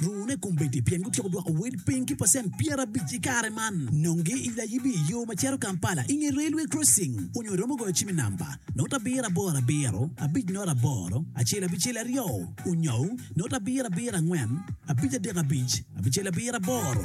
Rune kombeddi pien gutyeko dwoko wel piny ki pacent pyerabic i kare man. Nongi i layibi i yo ma cito Kampala i nge railway crossing onyo iromo goyo cim i namba, noto abiro aboro abiro, abic noto aboro, acel abicel aryo, onyo noto abiro abiro angwen, abic adek abic, abicel abiro aboro.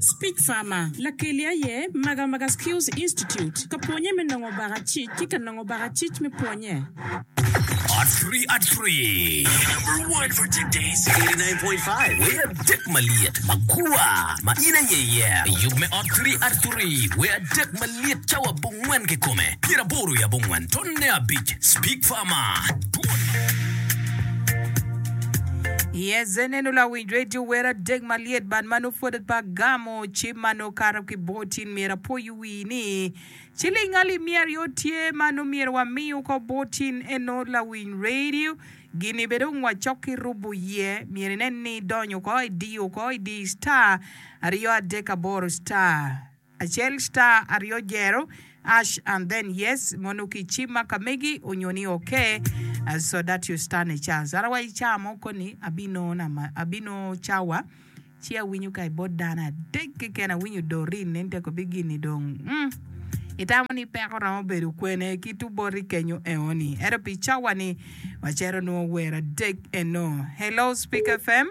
Speech Farmer, Lakeli aye Maga Maga Skills Institute ka pwonye me nongo baka cic ki ka nongo baka cic me pwonye. Ot Free Ot Free number one for today's 89.5 wai adek malyet magua ma in aye iye yub me Ot Free Ot Free wai adek malyet cawa abongwen kikome pyeraboro i abongwen tonne abic Speak Farmer twon. Yes, nen ula Radio wer adek malyet bad ma nongo pwod atwaa agamo ci ma nongo kato ki bor tin myero apoyo wii ni ciling alip miya aryo tye ma nongo myero wami woko bor tin eno lawiny radio gini bene dong wacok ki rubo iye myero inen ni idonyo woko idiyo woko idiyo star aryo adek aboro star. Acel star aryo jero ash and then yes mono ki ci ma ka megi onyo ni ok so that your star ne chance ara wa icar mo koni abino cawa ci awinyo ka ibot dano adek keken awinyo Doreen ne nteko bi gini dong mm itamo ni peko romo bedo kwene ki to bot i kenyo eoni ento pi cawa ni wacero nwo wer adek eno hello speak fm.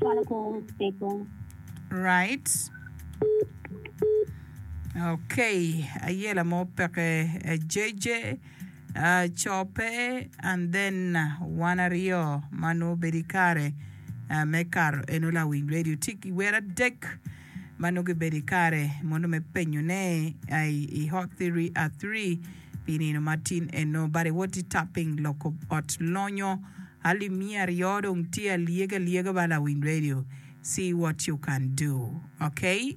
Cwalo kor cego. Right. Okay, aye la mo peke eh, JJ ah, cope and then wan aryo ma nongo obedo i kare ah, me kato eno lawiny redio tye ki wer adek. ma nongo gibedo i kare mono me penyo ne ai i hot thiri a thiri pi nino matin eno bade woti tapping loko ot lonyo alim miya aryo dong tye alyega lyega bala lawiny radio see what you can do okay.